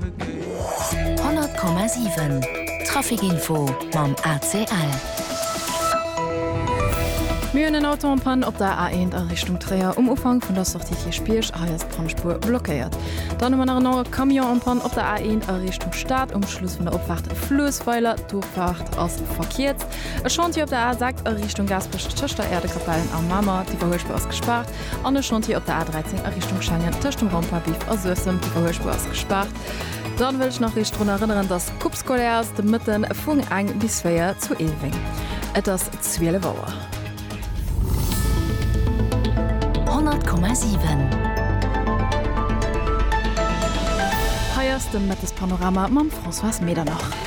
100,7 Trafic Info mam ACL. Mir hunn en Auto en Panne op der A1 a Richtung Tréier um Ufank vun der Sortie Kierchbierg. Hei ass d'Pannspuer blockéiert. Dann hu mer nach en anere Camion en Panne op der A1 a Richtung Stad um Schluss vun der Opfaart Fluessweiler. D'Offaart ass verkierzt. E Chantier op der A6 a Richtung Gaasperech tëscht der Äerdekapell a Mamer. D'Iwwerhuelspur ass gespaart. An e Chantier op der A 13 a Richtung Schengen tëscht dem Rond-point-Biff a Suessem, d'Iwwerhuelspuer ass gespaart. Dann wëll ech nach eech drun erënneren dass Coupe scolaire ass de Mëtten vung eng bis véier zu Eelweng. Et ass 12 Auer. 100,7. Hei ass de Mëttespanorama mam Françoise Medernach.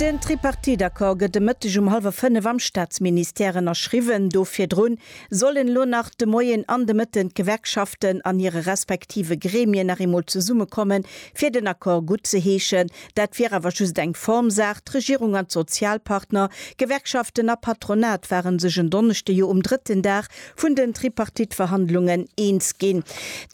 Den Tripartite-Accord gëtt e Mëtteg um hallwer fënnef am Staatsministère ënnerschriwwen. Do virdru sollen elo nach de Moien an de Mëtten d'Gewerkschaften an hire respektive Gremien nach eemol zesummekommen, fir den Accord gutt ze heeschen. Dat wier awer just eng Formsaach. D'Regierung an d'Sozialpartner, Gewerkschaften a Patronat, ware sech en Donneschde jo um drëtten Dag vun den Tripartite-Verhandlungen eens ginn.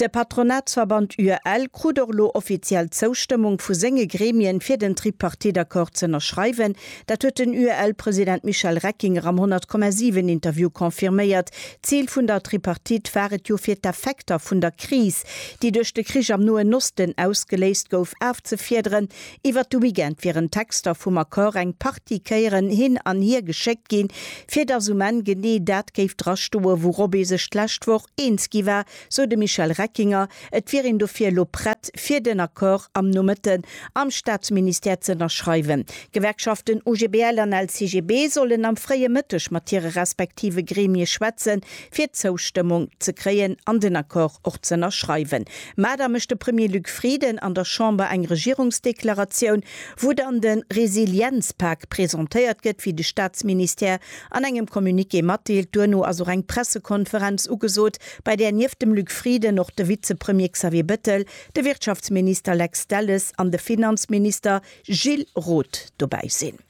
De Patronatsverband UEL krut och elo offiziell d'Zoustëmmung vu senge Gremien, fir den Tripartite-Accord z'ënnerschreiwen. Dat huet den UEL-President Michel Reckinger am 100,7-Interview confirméiert. D'Zil vun der Tripartite war et jo, fir d'Effekter vun der Kris, déi duerch de Krich am Noen Osten ausgeléist gouf, afzefiederen, Iwwert de Weekend wieren d'Texter vum Accord eng Partie Kéieren hin an hier geschéckt ginn, fir datt um Enn genee dat géif dra stoen, wourop ee sech d'lescht Woch eens gi war, sou de Michel Reckinger. Et wier een dofir elo prett, fir den Accord am Nomëtten am Staatsministère z'ënnerschreiwen. D'Gewerkschaften OGBL an LCGB sollen am fréie Mëtteg mat hire respektive Gremie schwätzen, fir d'Zoustëmmung ze kréien an den Accord och z'ënnerschreiwen. Mä da mécht de Premier Luc Frieden an der Chamber eng Regierungsdeklaratioun, wou dann de Resilienzpak presentéiert gëtt, wéi de Staatsministère an engem Communiqué matdeelt. Duerno ass och eng Pressekonferenz ugesot, bei där nieft dem Luc Frieden och de Vizepremier Xavier Bettel, de Wirtschaftsminister Lex Delles an de Finanzminister Gilles Roth dobäi sinn.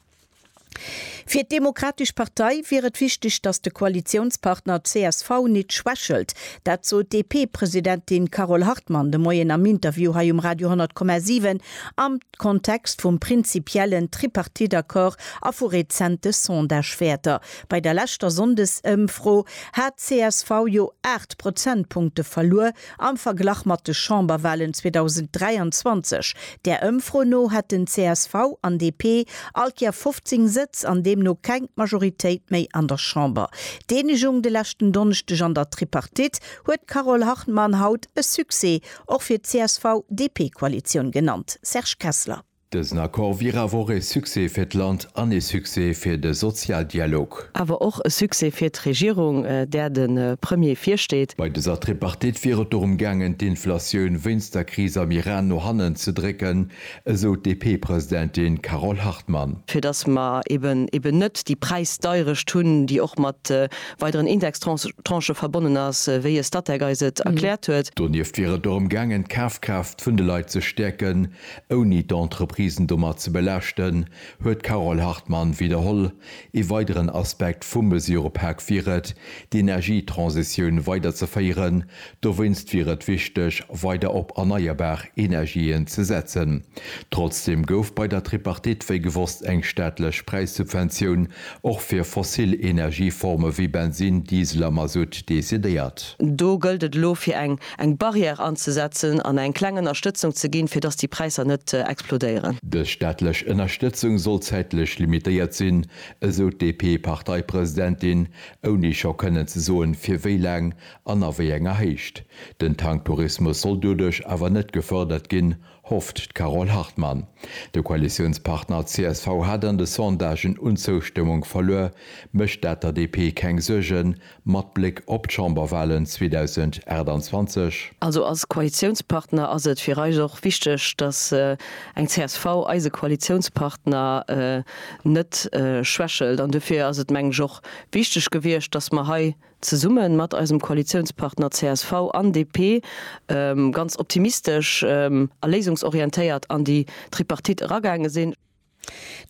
Fir d'Demokratesch Partei wier et wichteg, datt de Koalitiounspartner csv nit schwächelt. Dat sot d'DP-Presidentin Carole Hartmann de Moien am Interview hei um Radio 10,7 am Kontext vum prinzipiellen Tripartite-Accord a vu rezente Sondagewäerter. Bei der leschter Sonndesëmfro hat csv jo 8 Prozentpunkte verluer. Am Verglach mat de Chamberwahlen 2023, där Ëmfro no, hätten csv an DP all Kéier 15 Sëtz an deemno keng Majoritéit méi an der Chamber. D'Eenegung de leschten Donneschdeg an der Tripartite huet d'Carole Hartmann haut e Succès, och fir d'CSV-DP-Koalitioun genannt. Serge Kessler. Dësen Accord wier awer och ee Succès fir d'Land an ee Succès fir de Sozialdialog. Awer och e Succès fir d'Regierung, där de Premier virsteet. Bei dëser Tripartite wier et dorëm gaangen, d'Inflatioun wéinst der Kris am Iran no hannen ze drécken, esou d'DP-Presidentin Carole Hartmann. Fir datt mer eben net déi Präisdeierecht hunn, déi och mat weideren Indextranchë verbonnen ass, wéi e Statec eis et erkläert huet. Donieft wier et dorëm gaangen, d'Kafkraaft vun de Leit ze stäerken, Ouni d'Entreprisen domat ze belaaschten, huet d'Carole Hartmann widderholl. Ee weideren Aspekt vum Mesurëpak wier et, d'Energietransitioun weiderzeféieren. Dowéinst wier et wichteg, weider op erneierbar Energien ze setzen. Trotzdeem gouf bei der Tripartite wéi gewosst eng staatlech Präissubventioun och fir fossil Energieforme wéi Bensinn, Diesel a Mazout decidéiert. Do gëllt et elo fir eng eng Barrière anzesetzen an eng kleng Ënnerstëtzung ze ginn, fir dass déi Präisser net explodéieren. Dës staatlech Ënnerstëtzung soll zäitlech limitéiert sinn, esou d'DP-Parteipresidentin, ouni scho kënnen ze soen, fir wéi laang an a wéi enger Héicht. Den Tanktourismus soll doduerch awer net gefërdert ginn, hofft d'Carole Hartmann. De Koalitiounspartner csv hat an de Sondagen un Zoustëmmung verluer, mécht dat der DP keng Suergen, mat Bléck op d'Chamberwalen 2028? Also als Koalitiounspartner ass et fir eis och wichteg, datt eng csv eise Koalitiounspartner net schwächelt an dofir ass et, mengen ech, och wichteg gewiescht, datt mer hei, zesumme mat eisem Koalitiounspartner csv an DP, ganz optimistesch a léisungsorientéiert an déi Tripartite eragaange sinn.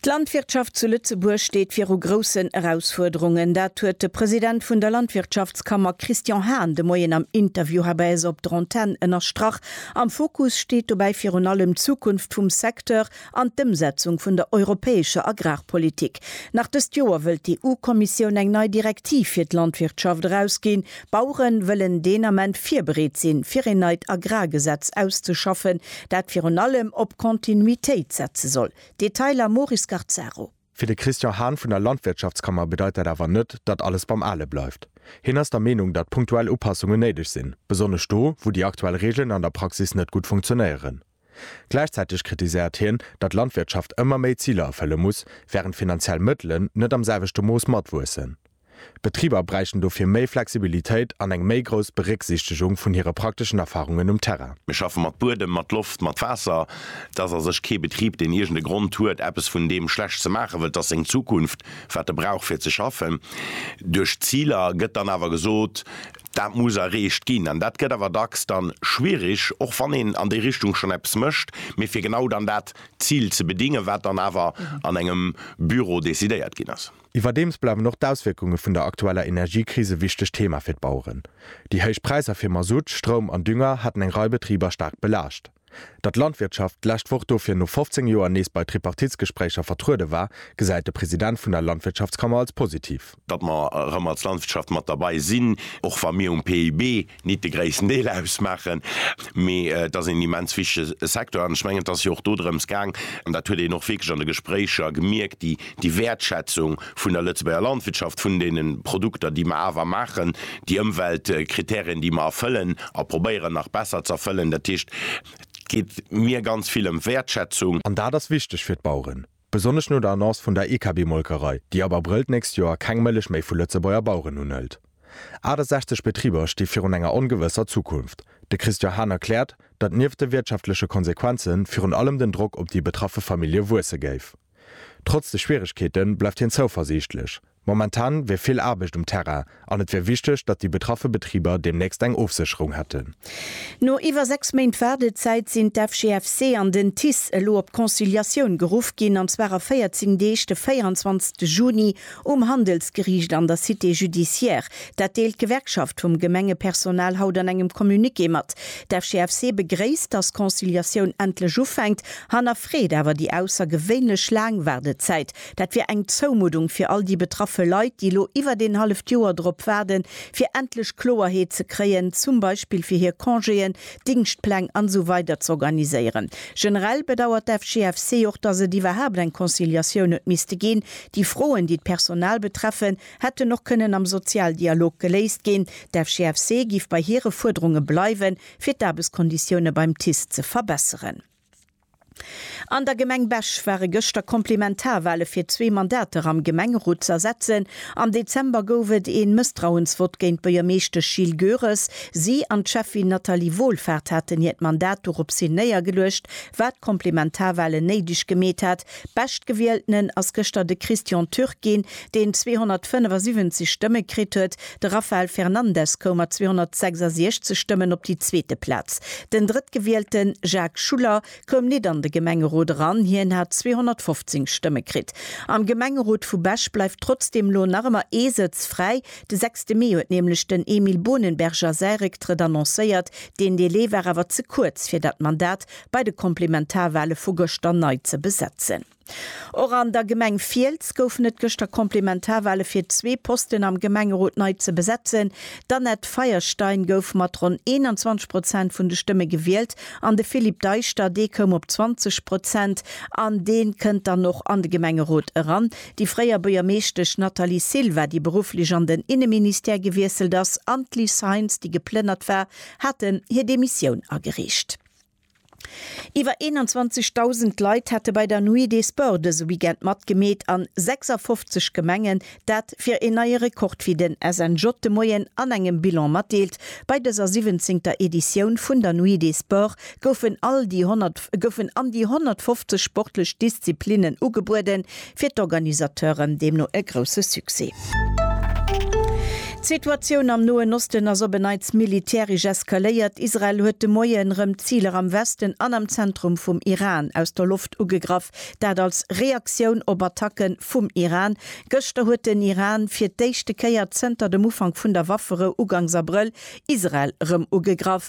D'Landwirtschaft zu Lëtzebuerg steet viru groussen Erausfuerderungen. Dat huet de President vun der Landwirtschaftskammer Christian Hahn de Moien am Interview hei bei eis op der Antenn ënnerstrach. Am Fokus steet dobäi virun allem d'Zukunft vum Secteur an d'Ëmsetzung vun der europäescher Agrarpolitik. Nach dëst Joer wëllt d'EU-Kommissioun eng nei Direktiv fir d'Landwirtschaft erausginn. D'Bauere wëllen deen Ament virbereet sinn, fir een neit Agrargesetz auszeschaffen, dat virun allem op Kontinuitéit setze soll. Detailer, Maury Scarzaro. Fir de Christian Hahn vun der Landwirtschaftskammer bedeit dat awer net, datt alles beim Ale bleift. Hien ass der Meenung, datt punktuell Upassungen néideg sinn, besonnesch do, wou déi aktuell Reegelen an der Praxis net gutt funktionéieren. Gläichzäiteg kritiséiert hien, datt d'Landwirtschaft ëmmer méi Ziler erfëlle muss, wärend d'finanziell Mëttelen net am selwechte Mooss matwuessen. D'Betriber bräichten dofir méi Flexibilitéit an eng méi grouss Berécksichtegung vun hire prakteschen Erfarungen um Terrain. Mir schaffe mat Buedem, mat Loft, mat Waasser. Et ass a sech kee Betrib, deen iergend e Grond huet, eppes vun deem schlecht ze maachen, wëll et ass seng Zukunft, wat e brauch fir ze schaffen. Duerch d'Ziler gëtt dann awer gesot, Dat muss erreecht ginn an dat gëtt awer dacks dann schwierig, och wann een an déi Richtung schonn eppes mécht, mee fir genau dann dat Zil ze bedingen, wat dann awer an engem Büro decidéiert ginn ass. Iwwerdeems bleiwen och d'Auswierkunge vun der aktueller Energiekris e wichtegt Thema fir d'Baueren. Déi héich Präisser fir Masutt, Stroum an Dünger haten eng Rei Betriber staark belaascht. Datt d'Landwirtschaft d'lescht Woch dofir no 15 Joer nees bei Tripartitsgespréicher vertruede war, gesäit de President vun der Landwirtschaftskammer als positiv. Datt mer erëm als Landwirtschaft mat derbei sinn, och wa mir um PIB nit de gréissten Deel ausmaachen, mee et ass een immens wichtege Secteur. An ech mengen, et ass jo och dodrëms gaang, an dat huet een och wierklech an de Gespréicher gemierkt, déi Wäertschätzung vun der Lëtzebuerger Landwirtschaft, vun deene Produkter, déi mer awer maachen, déi Ëmweltkriterien, déi mer erfëllen a probéieren nach besser ze erfëllen. Dat heescht, et geet mir ganz vill ëm Wäertschätzung. An dat ass wichteg fir d'Baueren, besonnesch no der Annonce vun der IKB-Molkerei, déi ab Abrëll d'nächst Joer keng Mëllech méi vu Lëtzebuerger Baueren unhëlt. 68 Betriber sti virun enger ongewësser Zukunft. De Christian Hahn erkläert, datt nieft de wirtschaftleche Konsequenze virun allem den Drock op déi betraffe Famillje wuesse géif. Trotz de Schwieregkeete bleift hien zouversiichtlech. Momentan wier vill Aarbecht um Terrain an et wier wichteg, datt déi betraffe Betriber deemnächst eng Ofsécherung hätten. No iwwer 6 Méint Waardezäit sinn d'FGFC an den TICE elo op Conciliatioun geruff ginn, an zwar a 14 Deeg, de 24 Juni Um Handelsgeriicht an der Cité judiciaire, dat deelt d'Gewerkschaft vum Gemengepersonal haut an engem Communiqué mat. D'FGFC begréisst, datt d'Conciliatioun endlech ufänkt, hannerfreet awer déi aussergewéinlech laang Waardezäit. Dat wier eng Zoumuddung fir all déi betraffe Leit, déi elo iwwert een halleft Joer drop waarden, fir endlech Kloerheet ze kréien, zum Beispill fir hir Congéen, Dingschtpläng an esou weider z'organiséieren. Generell bedauert d'FGFC och, datt et iwwerhaapt eng Conciliatioun huet misste ginn, Déi Froen, déi d'Personal betreffen, hätten och kënnen am Sozialdialog geléist ginn. D'FGFC géif bei hire Fuerderunge bleiwen, fir d'Aarbechtskonditioune beim TICE ze verbesseren. An der Gemeng Bech ware gëschter Komplementarwale fir zwee Mandater am Gemengerot ze ersetzen. Am Dezember gouf et ee Mësstrauensvott géint d'Buergermeeschtesch Jill Goeres. Si an d'Schäffin Nathalie Wohlfart haten hiert Mandat doropshin néiergeluecht, wat Komplementarwalen néideg gemeet hat, Beschtgewieltenen ass gëschter de Christian Türk ginn, deen 275 Stëmme kritt huet. De Rafael Fernandes koum mat 266 Stëmmen op déi zweete Plaz. Den Drëttgewielten, Jacques Schuller, koum nit an de Gemengerot eran, hien hat 215 Stëmme kritt. Am Gemengerot vu Bech bleift trotzdeem elo nach ëmmer ee Sëtz fräi. De sechste Mee huet nämlech den Emile Bohnenberger säi Récktrëtt annoncéiert. Deen Delai war awer ze kuerz, fir dat Mandat bei de Komplementarwale vu gëschter nei ze besetzen. Och an der Gemeng Fiels goufen et gëschter Komplementarwale fir zwee Posten am Gemengerot nei ze besetzen. D'Annette Feierstein gouf mat ronn 21 Prozent vun de Stëmme gewielt an de Philippe Deischter, dee koum op 20 Prozent an dee kënnt dann och an de Gemengerot eran. Déi fréier Buergermeeschtesch Nathalie Silva, déi berufflech an den Inneministère gewiesselt ass, an d'Liz Heintz, déi geplënnert war, haten hir Demissioun agereecht. Iwwer 21.000 Leit hätte bei der Nuit des Sports dëse Weekend matgemeet an 56 Gemengen. Dat wier een neie Rekord, wéi den SNJ de Moien an engem Bilan matdeelt. Bei dëser siwwenzéngter Editioun vun der Nuit des Sports goufen all déi 100, goufen an déi 150 sportlech Disziplinnen ugebueden, Fir d'Organisateuren deemno e grousse Succès. D'Situatioun am Noen Osten ass op en Neits militäresch eskaléiert. Israel huet de Moie rëm Ziler am Westen an am Zentrum vum Iran aus der Loft ugegraff, dat als Reaktioun op Attacke vum Iran. Gëschter huet den Iran fir d'éischte Kéier zënter dem Ufank vun der Wafferou uganks Abrëll Israel rëm ugegraff.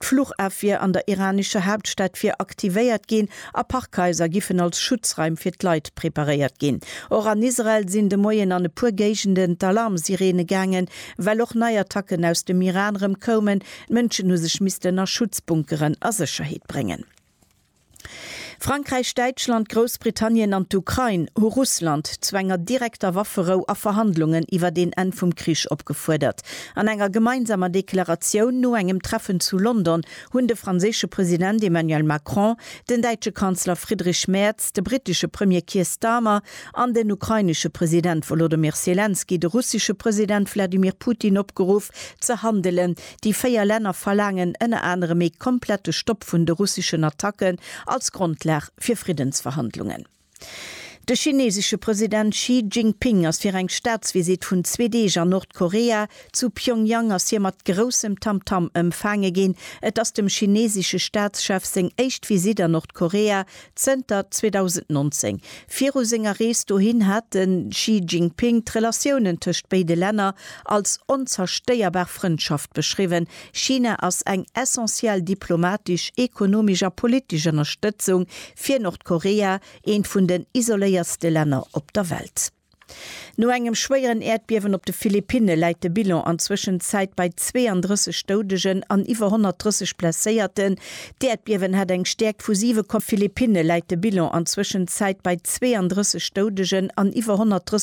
D'Fluchafwier an der iranescher Haaptstad wier aktivéiert ginn a Parkhaiser giffen als Schutzraim fir d'Leit preparéiert ginn. Och an Israel sinn de Moien an e puer Géigenden d'Alarmsireene gaangen, well och nei Attacken aus dem Iran rëm koumen. D'Mënschen hu sech missten a Schutzbunkeren a Sécherheet bréngen. Frankräich, Däitschland, Groussbritannien an d'Ukrain hu Russland zu enger direkter Wafferou a Verhandlungen iwwert een Enn vum Krich opgefuerdert. An enger gemeinsamer Deklaratioun no engem Treffen zu London hunn de franséische President Emmanuel Macron, den däitsche Kanzler Friedrich Merz, de brittesche Premier Keir Starmer an den ukrainesche President Wolodymyr Selenskyj de russesche President Wladimir Putin opgeruff, ze handelen, Déi véier Länner verlaangen ënner anerem ee komplette Stopp vun de russeschen Attacken als Grondlag fir Friddensverhandlungen. De chinesesche President Xi Jinping ass fir eng Staatsvisitt vun zwee Deeg an Nordkorea. Zu Pyongyang ass hie mat groussem Tamtam ëmfaange ginn. Et ass dem chinesesche Staatschef seng éischt Visitt an Nordkorea Zënter 2019. Viru senger Rees dohin hat de Xi Jinping d'Relatiounen tëscht béide Länner als onzerstéierbar Frëndschaft beschriwwen. China ass eng essentiell diplomatesch, ekonomesch a politesch Ënnerstëtzung fir Nordkorea, eent vun den isoléiertste Länner op der Welt. No engem schwéieren Äerdbiewen op de Philippinne läit de Bilan an Zwëschenzäit bei 32 Doudegen an iwwer 130 Blesséierten. D'Äerdbiewen hat eng Stäerkt vu 7, Philippinne läit de Bilan an Zwëschenzäit bei 32 Doudegen an iwwer 130.